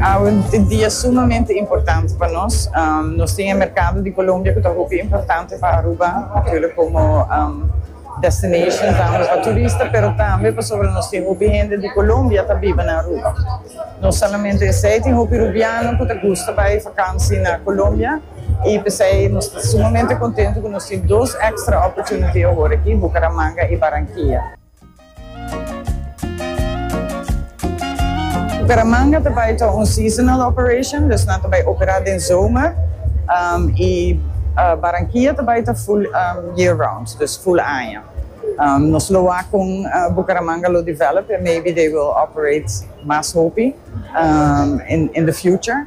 Awe e dia sumamente importante pa nos. Nos tin e merkado di Colombia cu ta hopi importante pa Aruba, natuurlijk como destination tambe pa turista, pero tambe pasobra nos tin hopi hende di Colombia ta biba na Aruba. No solamente esey, tin hopi Rubiano cu ta gusta bay vakantie na Colombia y p'esey nos ta sumamente contento cu nos tin dos extra opportunity awor aki, Bucaramanga y Barranquilla. Bucaramanga ta bai ta un seasonal operation, dus nan ta bai opera den zomer, y Barranquilla ta bai ta full year round, dus full aña. Nos lo wak con Bucaramanga lo develop, and maybe they will operate mas hopi in the future.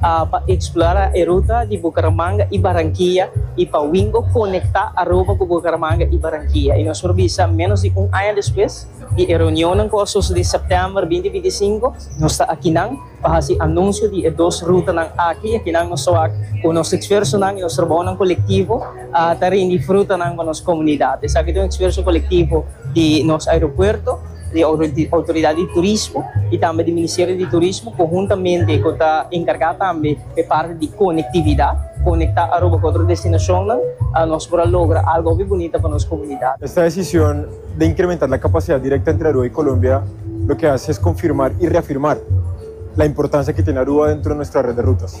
pa eksplora e ruta di Bucaramanga i Barankia i pa wingo konektá Aruba ku Bucaramanga i Barankia. I nos por bisa, ménos di un aña despues di e reunionnan ku a sosodí sèptèmber binti binti sinku, nos ta akinan pa hasi anunsio di e dos rutanan aki. Akinan nos ta wak ku nos esfuersonan i nos trabounan kolektivo. a ta rindi frutanan pa nos komunidat. Esaki ta un esfuerso kolektivo di nos aeropuerto, di Outoridad di Turismo i tambe di Ministerio di Turismo konhuntamente ku ta enkargá tambe pa e parti di konektividat, konektá Aruba ku otro destinashonnan, nos por a logra algu hopi bunita pa nos komunidat. Esta desishon di inkrementá la kapasidat direkta entre Aruba i Kolombia loke hasi es konfirmar i reafirmar la importansia ku tene Aruba dentro di nuestro red di rutas.